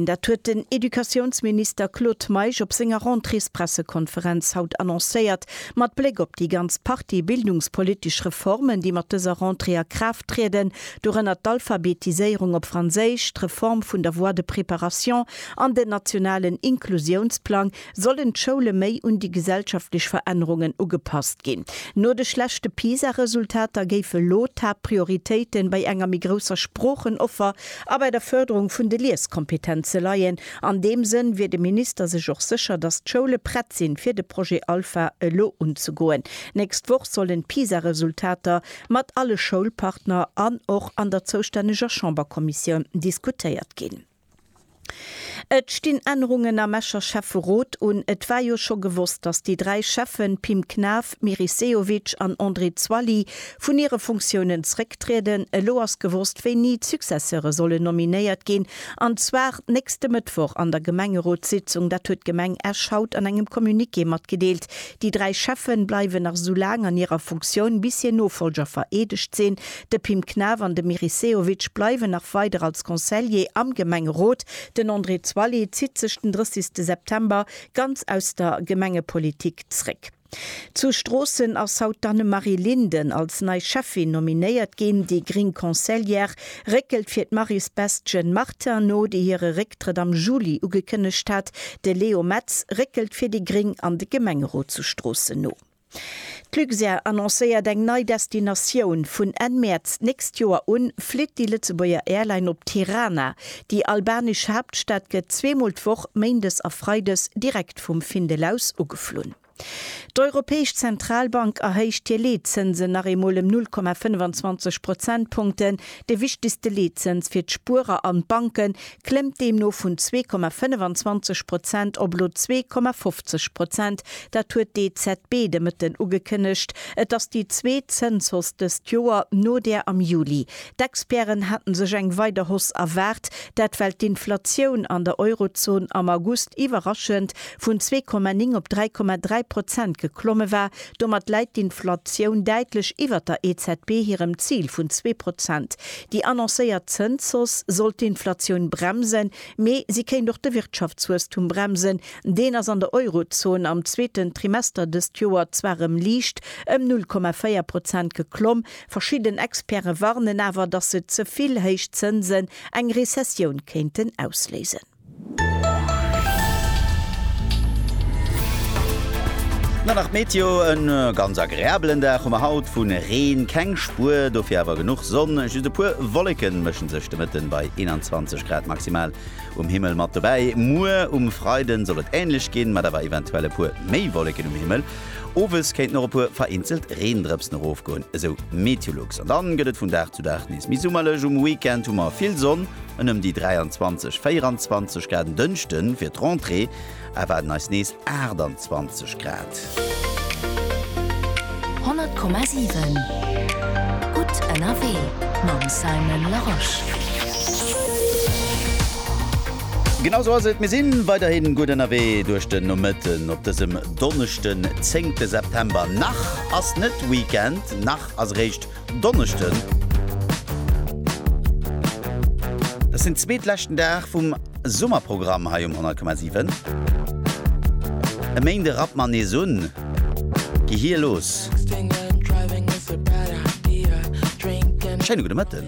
Dat huet den Educatiounsminister Claude Meisch op senger Rentréespressekonferenz haut annoncéiert. Mat Bléck op déi ganz Partie bildungspolitesch Reformen, déi mat dëser Rentrée a Kraaft trieden, dorënner d'Alphabetiséierung op Franséisch, d'Reform vun der Voie de préparation an den nationalen Inklusiounsplang, Sollen d'Schoule méi un déi gesellschaftlech Verännerungen ugepasst ginn? No de schlechte PISA-Resultater géif elo d'Haaptprioritéite bei enger méi grousser Sproochenoffer a bei der Fërderung vun de Lieskompetenze leien. An deem Sënn wier de Minister sech och sécher, datt d'Schoule prett sinn, fir de Projet Alpha elo unzegoen. Nächst Woch sollen d'PISA-Resultater mat alle Schoulpartner an och an der zoustänneger Chamberkommissioun diskutéiert ginn. Et stinn Ännerungen am Escher Schäfferot un. Et war jo scho gewosst, datt déi dräi Schäffen, Pim Knaff, Meris Sehovic an André Zwally, vun hire Funktiounen zrécktrieden. Elo ass gewosst, wéini d'Successeure sollen nominéiert ginn, an zwar nächste Mëttwoch an der Gemengerotssitzung. Dat huet d'Gemeng Esch haut an engem Communiqué matgedeelt. Déi dräi Schäffe bleiwen nach esou laang an hirer Funktioun, bis hir Nofolger vereedegt sinn. De Pim Knaff an de Meris Sehovic bleiwen nach weider als Conseiller am Gemengerot. Den André Zwally zitt sech den 30 de September ganz aus der Gemengepolitik zréck. Zu Stroossen ass haut d'Annemarie Linden als nei Schäffin nominéiert ginn. Déi gréng Conseillère réckelt fir d'Marie Sebastien Martin no, déi hire Récktrëtt am Juli ugekënnegt hat. De Leo Metz réckelt fir déi gréng an de Gemengerot zu Stroossen no. D'Luxair annoncéiert eng nei Destinatioun, Vun Enn Mäerz d'nächst Joer un flitt déi Lëtzebuerger Airline op Tirana. Déi albanesch Haaptstad gëtt zweemol d'Woch, méindes a freides, direkt vum Findel aus ugeflunn. D'Europäesch Zentralbank erhéicht hir Leetzënsen nach eemol ëm 0,25 Prozentpunkten. De wichtegste Leetzëns fir d'Spuerer an d'Banke klëmmt deemno vun zwee Komma 25 Prozent op elo zwee Komma 50 Prozent. Dat huet d'EZB de Mëtten ugekënnegt. Et ass déi zweet Zënshausse dëst Joer, no där am Juli. D'Experten hate sech eng weider Hausse erwaart, dat well d'Inflatioun an der Eurozon am August iwwerraschend vun zwee Komma 9 op dräi Komma dräi Prozent geklomme war, Domat läit d'Inflatioun däitlech iwwert der EZB hirem Zil vun zwee Prozent. Déi annoncéiert Zënshausse soll d'Inflatioun bremsen, mee si kéint och de Wirtschaftswuesstum bremsen. Deen ass an der Eurozon am zweeten Trimester dëst Joer zwar erëm liicht, ëm 0,4 Prozent geklomm. Verschidden Experte warnen awer, datt se ze vill héich Zënsen eng Rezessioun kéinten ausléisen. Dann nach d'Meteo, E ganz agreabelen Dag hu mer haut, vu Reen keng Spuer, dofir awer genuch Sonn. Just e puer Wolleke mësche sech de Mëtten bei 21 Grad maximal um Himmel mat dobäi. Muer um Freide soll et änlech ginn, mat awer eventuell e puer méi Wolleken um Himmel. Owes kéinten och e puer vereenzelt Reendrëpsen erofgoen, esou Meteolux. An da gëtt et vun Dag zu Dag nees méi summerlech, um Weekend hu mer vill Sonn. En ëm déi 23, 24 Grad. En Dënschde wier d'Rentrée, erwaarden eis nees 28 Grad. 100,7 gutt ënnerwee mam Simon Larosche. Genau sou ass et, mir si weiderhi gutt ënnerwee duerch den Nomëtten op dësem Donneschden, 10 September. Nach ass net Weekend, nach ass eréischt Donneschden. Dass den zweet leschten Dag vum Summerprogramm hei um 100,7. E Méinde rappt mer nees un. Gehier los. Schéine gudde Mëtten.